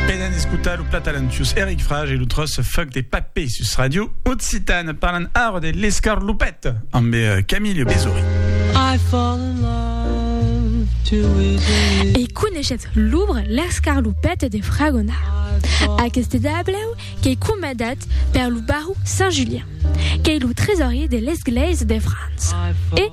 Venen escutar lo plat talentius Eric Frage e lo tros Fuck de Papé sus Radio Occitane. Parlan ara de l'escarlopet amb eh, Camille Besori. I fall in love too easily. E coneixetz l'obre L'escarlopet de Fragona. Aqueste dableu qu'ei comandat per lo baró Saint-Julien, qu'ei lo tresorier de l'esglèisa de França. E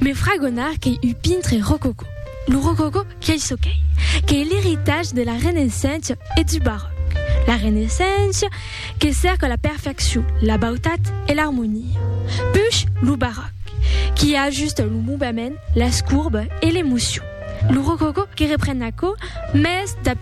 Me fragonar qu'ei un pintre rococò. Lo rococò qu'ei çò qu'ei, qu'ei l'eritatge de la Renaissença e du Baròc. La Renaissença que cèrca la perfeccion, la bautat e l'armonia. Puish lo Baròc qui ajusta lo movement, las courbes e l'emocion. Lo rococò que repren aquò mès dab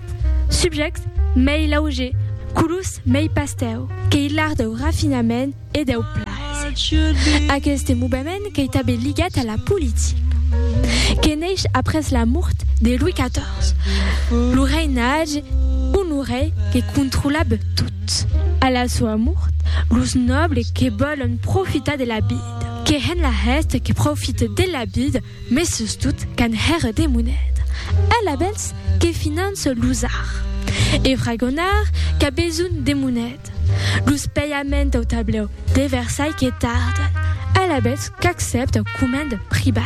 subjèctes mei laugers, colors mei pastèu, qu'ei l'art dau rafinament, e deu plaser. Aqueste movement qu'ei tanben ligat a la politica, que neish après la mort de Louis XIV, lo reinatge Honoré que controlab tot. A la soa mort, los nòbles que vòlon profitar de la vida, que hèn la hèsta que profite de la vida, mes sustot qu'an hèr de moneda, alabèls que finance los arts e fragonard qu'a besonh de moneda. Tat, los paiaments dau tablèu de Versailles que tardan, alavetz qu'accèpt dau coment privat.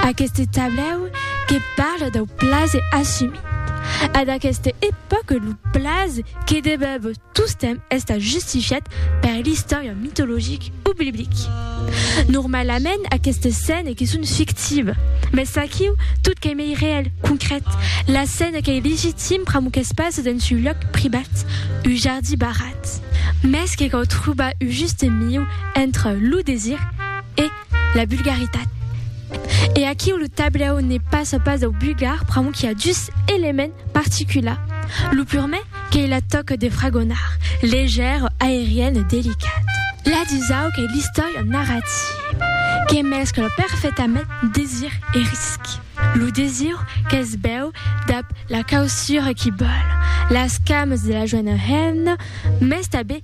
Aqueste tablèu que parla dau plase assumit. A d'aqueste epòca lo plase que debèva tostemp estar justifiat per l'istòria mitologic. public. Normalament aquestes scènes que son fictives, mès aquiu tot qu'ei mei reèl, concrèt. La scène qu'ei legitim pr'amor qu'es pas dens un lòc privat, un jardí barrat, mès que cau trobar un juste miu entre lo desir e la vulgaritat. E aquiu lo tablèu ne passa pas dau vulgar pr'amor qu'i a dus elements particulars, lo purement, Qu'ei la tòca de fragonar, legèr, aerian e delicat. La dusau qu'ei l'istòria narrativa que mescla perfetament desir e risc. Lo desir qu'es bèu dab la causura qui bòl, las cames de la joena hemna, mès tanben